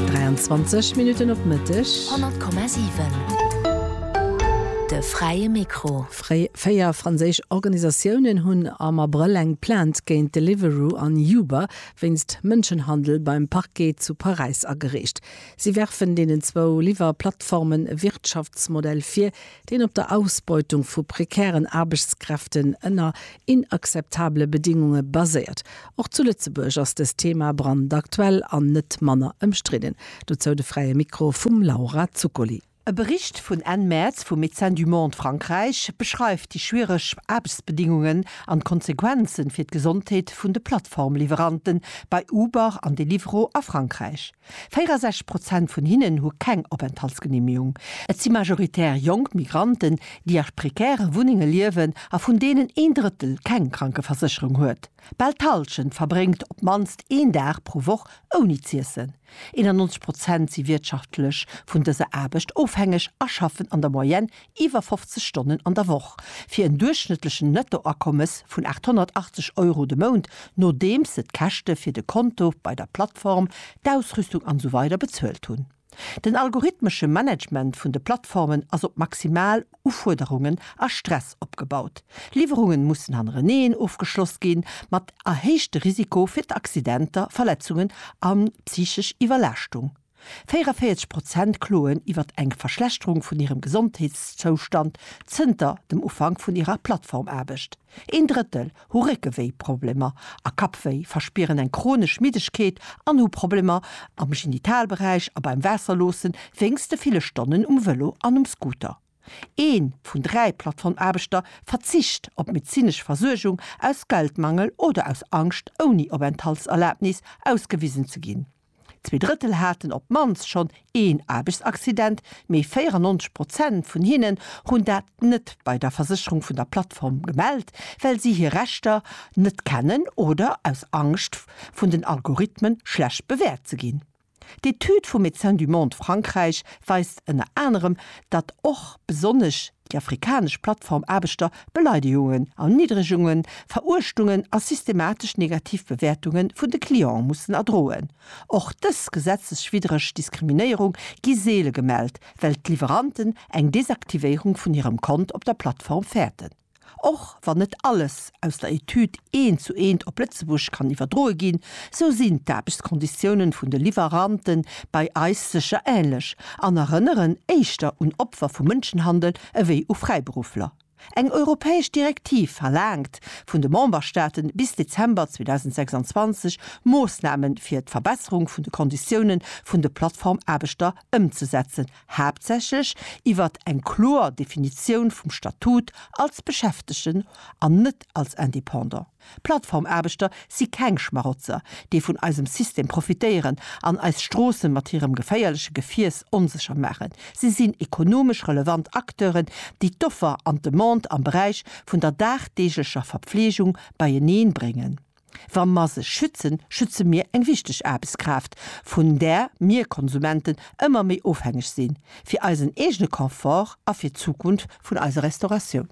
23 Minutten op Mëtteg. 100,7 De fräie Mikro. Fréi véier franséisch Organisatiounen hunn am Abrëll eng Plainte géint Deliveroo an Uber wéinst Mënschenhandel beim Parquet zu Paräis agereecht. Si werfen deenen zwou Liwwer-Plattformen e Wirtschaftsmodell vir, deen op der Ausbeutung vu prekären Aarbechtskräften ënner inakzeptabele Bedingunge baséiert. Och zu Lëtzebuerg ass dëst Thema brandaktuell an net manner ëmstridden. Dozou de Fräie Mikro vum Laura Zuccoli. E Bericht vun Enn Mäerz vu Médecins du Monde Frankräich beschreift déi schwiereg Aarbechtsbedingungen an d'Konsequenzen fir d'Gesondheet vun de Plattformliwweranten bei Uber an Deliveroo a Frankräich. 64 Prozent vun hinnen hu keng Openthaltsgenehmegung. Et si majoritär jonk Migranten, déi a prekäre Wunnenge liewen a vun deenen een Drëttel keng Krankeversécherung huet. Bal d'Hallschent verbréngt op d'mannst een Dag pro Woch ouni z'iessen. 91 Prozent si wirtschaftlech vun dëser Aarbecht ofhängeg a schaffen an der Moyenne iwwer 50 Stonnen an der Woch, fir en duerchschnëttlechen Nettoakommes vun 880 Euro de Mount, nodeems se d'Käschte fir de Konto bei der Plattform, d'Ausrüstung an esou weider bezuelt hunn. Den algorithmesche Management vun de Plattformen ass op maximal Ufuerderungen a Stress opgebaut. Liwwerungen mussen hannereneen ofgeschloss ginn, mat erhéichte Risiko fir d'Accidenter, Verletzungen a psychesch Iwwerlaaschtung. 44 Prozent kloen iwwert eng Verschlechterung vun hirem Gesondheetszoustand zënter dem Ufank vun hirer Plattformaarbecht, een Drëttel hu Réckewéiproblemer a Kappwéi, verspieren eng chronesch Middegkeet an hu Problemer am Genitalberäich a beim Waasserloosse wéinst de ville Stonnen um Vëlo an um Scooter. Ee vun dräi Plattformaarbechter verzicht op medezinesch Versuergung aus Geldmangel oder aus Angscht, ouni Openthaltserlabnis ausgewisen ze ginn. Zwee Drëttel haten op d'mannst schonn een Aarbechtsaccident, mee 94 Prozent vun hinnen hunn dat net bei der Versécherung vun der Plattform gemellt, well si hir Rechter net kennen oder aus Angscht, vun den Algorithmen schlecht bewäert ze ginn. D'Etüd vu Médecins du Monde Frankräich weist ënner anerem, datt och besonnesch Déi afrikanesch Plattformaarbechter, Beleidigungen, Erniddregungen, Veruechtungen a systematesch negativ Bewäertunge vun de Cliente mussen erdroen. Och dës gesetzeswiddreg Diskriminéierung gi seele gemellt, well d'Liwweranten eng Desaktivéierung vun hirem Kont op der Plattform fäerten. Och wann net alles aus der Etüd eent zu eent op Lëtzebuerg kann iwwerdroe ginn, sou sinn d'Aarbechtskonditiounen vun de Liwwerante bei eis sécher änlech an erënneren éischter un Opfer vu Mënschenhandel ewéi u Fräiberuffler. Eng europäesch Direktiv verlaangt vun de Memberstaate bis Dezember 2026 Moossname fir d'Verbesserung vun de Konditioune vun de Plattformaarbechter ëmzesetzen, haaptsächlech iwwert eng kloer Definitioun vum Statut als Beschäftegten an net als Indépendant. Plattformaarbechter si keng Schmarotzer, déi vun eisem System profitéieren an eis Stroossen mat hirem geféierleche Gefiers onsécher maachen. Si sinn ekonomesch relevant Acteuren, déi d'Offer an d'Demande am Beräich vun der dagdeeglecher Verpfleegung beieneen bréngen. Wa mer se schützen, schütze mir eng wichteg Aarbechtskraaft, vun där mir Konsumenten ëmmer méi ofhängeg sinn, fir eisen eegene Confort a fir d'Zukunft vun eiser Restauratioun.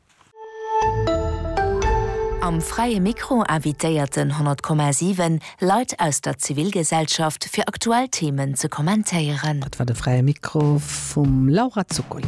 Am Fräie Mikro invitéiert den 100,7 Leit aus der Zivilgesellschaft, fir aktuell Themen ze kommentéieren. Dat war de Fräie Mikro vum Laura Zuccoli.